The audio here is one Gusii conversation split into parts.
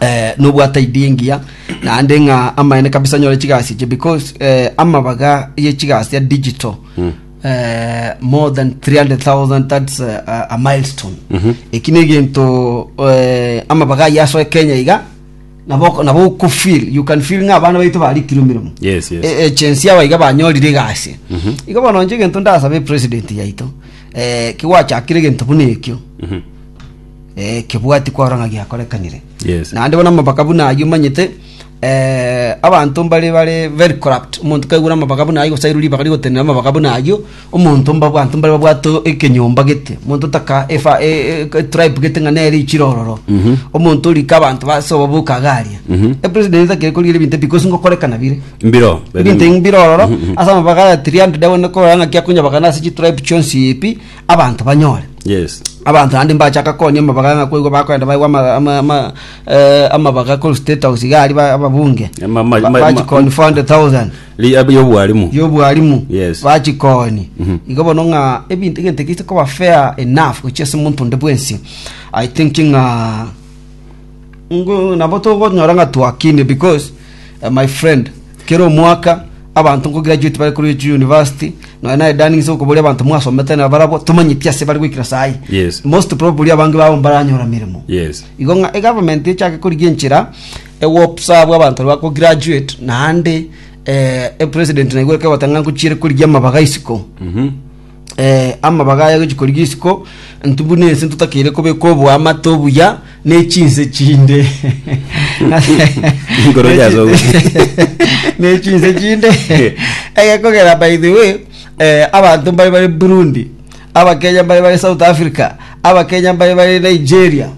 eh, nobwata idea engiya naende ng'a amaene kabisa nyore chigasi eche because eh, amabaga ye chigasi ya digital eh, more than 300000 that's eh, a- a milestone eki ne egento eh, amabaga aye asoe kenya iga nabo nabo okofeel you can feel ng'a abana baito barikirwe mirimo Yes, yes. E- echensi aba iga banyorire egasi iga bono nche egento ndasabe president yaito eh, kigwachakire egento buna ekio eh, kebwati kwaro ng'a giakorekanire Yes. naende bono amabaka buna ayio manyete eh, abanto mbare bare very corrupt omonto kaigure amabaka buna ayio gosairwa ribaka rigotenena amabaka buna ayio omonto mba abanto mbare babwate ekenyomba gete omonto taka efa e, e, e, tribe gete ng'a nere ichire ororo Mhm. omonto orika abanto base obaboka agaria Mhm. epresident takere korigira ebinto ebi because ngokorekana bire mbiro ebinto ebi bire ororo ase amabaka aya 300 abone korora ng'a kiakonyabaga nase chitribe chionsi ebi abanto banyore Yes. abanto andi mbachaka konya amabaga ng'a kwaigwa bakoenda baigwa ama- ama- ama- eh, amabaga kuru state house iga ari ba- ababunge Ama- ma- Ba- ma- bachikoni ma- 400000 Ri ab- yobwarimu. yobwarimu Yes. bachikoni Mhm. igo bono ng'a ebinto egento gise koba fair enough gochia ase omonto onde bwensi i think ng'a Ngu- nabo togonyora ng'a twakine because eh, my friend kera omwaka abanto nkograduate bare korwa echi university nonya naye dani ng'ise gokoboria abanto mwasomete na barabo tomanyeti ase bari goikera sayi Yes. most probably abange babo mbaranyora mirimo Yes. igo ng'a egovernment echake korigia enchera egobsabwa abanto baria bakograduate naende eh, epresident naigwere kegoteba ng'a nkochiire korigia amabaga isiko Mhm. eh, amabaga aya gochia korigia isiko, intwe buna ense ntotakeire kobeka oboamate obuya nechinse chinde Ngoro yazo. nechinse chinde egekogera by the way eh, abanto mbare bare burundi abakenya mbare bare south africa abakenya mbare bare nigeria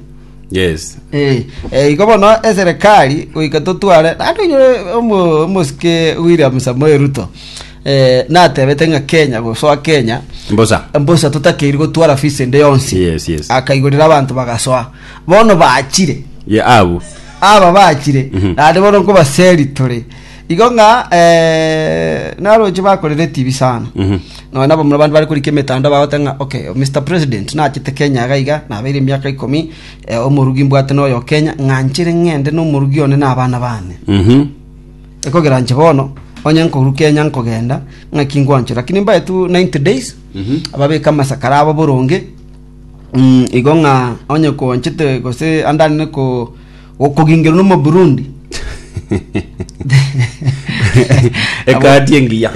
yes Eh, eh, igo bono eserekari goika totware naende oyo omo- omosike william samoe ruto Eh, natebete ng'a Kenya gosoa Kenya Mbosa. mbosa totakeiri gotwara fees ende yonsi Yes, yes. akaigorera abanto bagasoa bono bachire Ye abu. aba bachire Mhm. naende bono nkobaseri tore igo ng'a eh, naroche bakorere tv sana Mhm. nonya nabo muna bande bari korika emetando bagote ng'a okay mr president nachete kenya iga iga nabeire emiaka ikomi eh, omorugi mbwate noyo kenya ng'a nchire ng'ende nomorugi one na abana bane Mhm. ekogera nche bono, onye nkoruka enya nkogenda, ng'aki ngwanche? Lakini mbaye tu 90 days, ababeke amasakara abo boronge, mm, igo ng'a onye kwanchete gose ande arinde ko- gokogingerwa n'Omoburundi. Ekati engiya.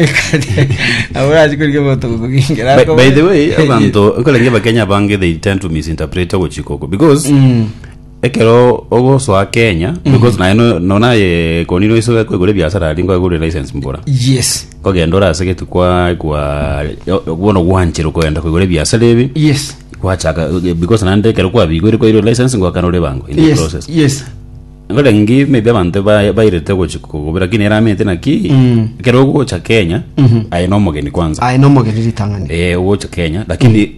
Nabo orache korigia omonto gokogingira. By, by the way, abanto, ekorenge Abakenya bange, they tend to misinterpret ogochika oko, because Mm. Ekero ogosoa Kenya because naye no- no naye koni noiso kwegura ebiasara aria nkwegure license mbora yes kogenda ore ase geti kwa kwa yo- bono gwanchire kogenda kwegura ebiasara ebi yes gwachaka because naende ekero kwabigure kwairwe license ngwakana ore ebango in the yes process yes ngore ngi maybe abanto ba- bairete gochi kogobe lakini eramete naki Mm. ekero ogocha Kenya Mhm. aye nomogeni kwanza aye nomogeni ritang'ani eh ogocha Kenya lakini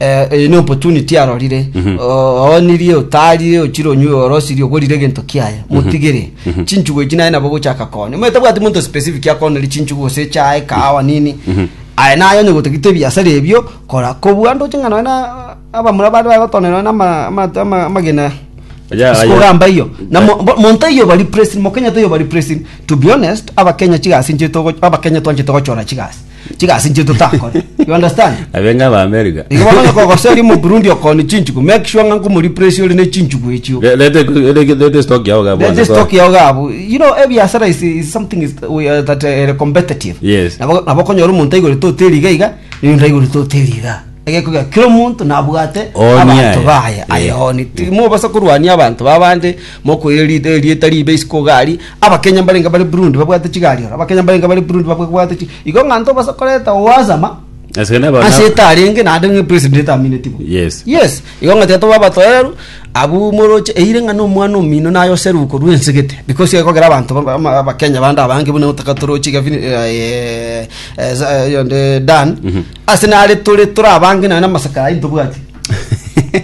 Eh, eyi ne opportunity arorire oonirie otaarire ochire onywe orosirie ogorire egento kiaye motigere chinchugu echi naye nabo gochaka koone omanyete bwati monto specific akoonere chinchugu gose echae kaawa nini aye naye onye gotagete ebiasara ebio kora kobua ndoche ng'a nonya na abamura bare bagotoonera nonya na ama- ama- ama- amagena Oya, aya- sikogamba iyo na mo- bo- monto iyo bari pressing mokenya toyo bari pressing to be honest abakenya chigasi nchete ogo abakenya twanchete gochora chigasi chigasi inche totakore you understand abe ng'a abameriga igo bono nyakogoseria omo Burundi okone chinchugu make sure ng'a nkomureplace ore ne chinchugu echio Le- lete lete- lete stock yao gabo Then just talk yao gabu you know ebiasara is, is something is, we are, that uh, competitive Yes. nabo nabo okonyora omonto aigore toteri iga iga noyonde aigore toteri iga egekuga kira omonto nabwate Onie abanto aye. baye aye Yeah. oni timobasa korwania abanto babande mokoire rieta ribe isiko gari Abakenya mbarenge bare Burundi babwate chigarioro, abakenya mbarenge bare Burundi babwate chi... Igo ng'a ntoba ase koreta oasama, Ase na abana- ase etarenge naende ng'a epresident etamineti bo. Yes. Yes, igo ng'a tiga toba abatoeru, abwo moroche eire ng'a na omwana omino naye oserwe korwa ensegete, because ekogera abanto ba- ama- abakenya bande abange buna gotaka toroche iga biri eh, eh, za- eyonde Dan, ase nare tore tore abange nonye na amasake aye ntobwati.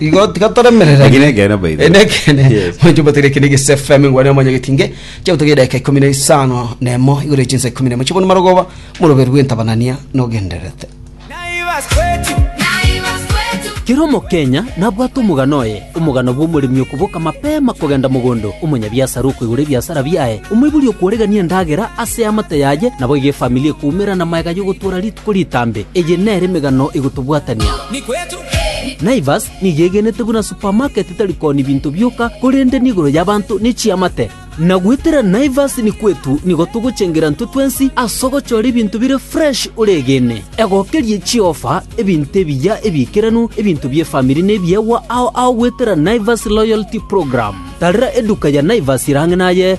igo tiga toremerere Lakini ekeene by the way. enekene Yes. mwancho mbatire ekene gese fm ngwane omanya getinge chao toge dakika ikumi na isano nemo igoro chinsa ikumi nemo chibono marogoba moroberu entabanania nogenderete Naivas kwetu. Naivas kwetu. Kera omokenya nabwate omogano oye, omogano bw'omoremi okoboka mapema kogenda mogondo, omonyabiasara okoigora ebiasara biaye, omoibori okworegania endagera ase amate yaye, naboigo efamili ekoumera namaega y'ogotoora rituko ritambe. Eye nere emegano egotobwatania. Naivas nigo egenete buna supamaketi tari kooni binto bioka, korende nigoro y'abanto ne chiamate. Na goetera Naivas nikwetu nigo togochengera intwe twensi ase ogochora ebinto bire fresh oregene. Egokerie chiofa, ebinto ebiya ebiikeranu, ebinto bi'efamiri nebiegwa ao ao goetera Naivas Loyalty Program. Tarera eduka ya Naivas irang'e naye,